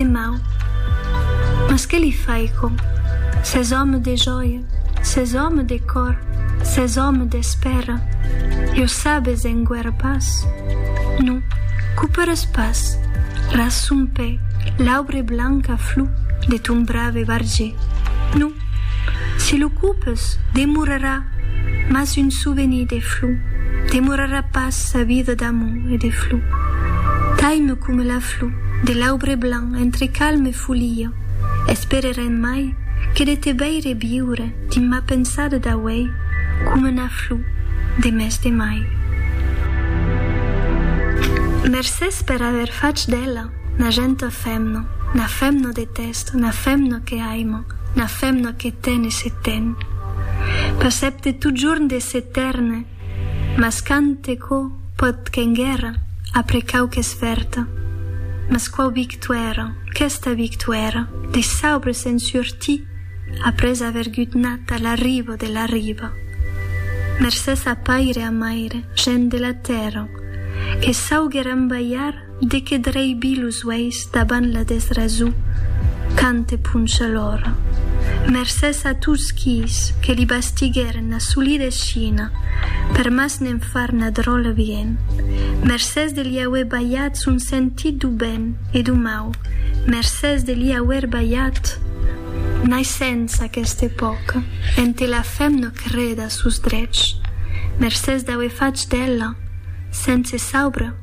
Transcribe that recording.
de mau. Mas que li faico? S'es òme de jòia, s'es òme de còr, s'es òme d'espèra, jo sabes enguèra pas. Non, coperes pas, ras son pè, l'aubre blanca flor de ton brave barger. Non, si lo copes, demorarà mas un souvenir de flor, demorarà pas sa vida d'amor e de flor. Taime coma la flor. Lo de l'aubre blanc entre calm e folia Espererem mai que de te veire viure Dins ma pensada d'auei coma 'na flor de mes de mai Mercés per aver fach d'ela 'na genta femna 'Na femna de tèst, 'na femna que aima 'Na femna que ten e se ten Pas ep de totjorn de s'etèrne Mas quand te quò pòt qu'enguèra, après quauques vèrta. Mas quò victuèra, questa victuèra, de saubre se'n surti, après aver gutnat a la riba de la riba. Mercés a paire a maire, gent de la tèrra, que sauguèran balhar De que draibi los uèis davant la desrasó quand te poncha l'ora. Mercés a tots quis que li bastiguèren la solida escina per mas ne'n far na dròla bien. Mercés de li auer balhat son sentit do ben e do mau. Mercés de li auer balhat. Naissènça aquesta epòca en te la femna creda a sos drechs. Mercés d'auer fach d'ela, sense saubre,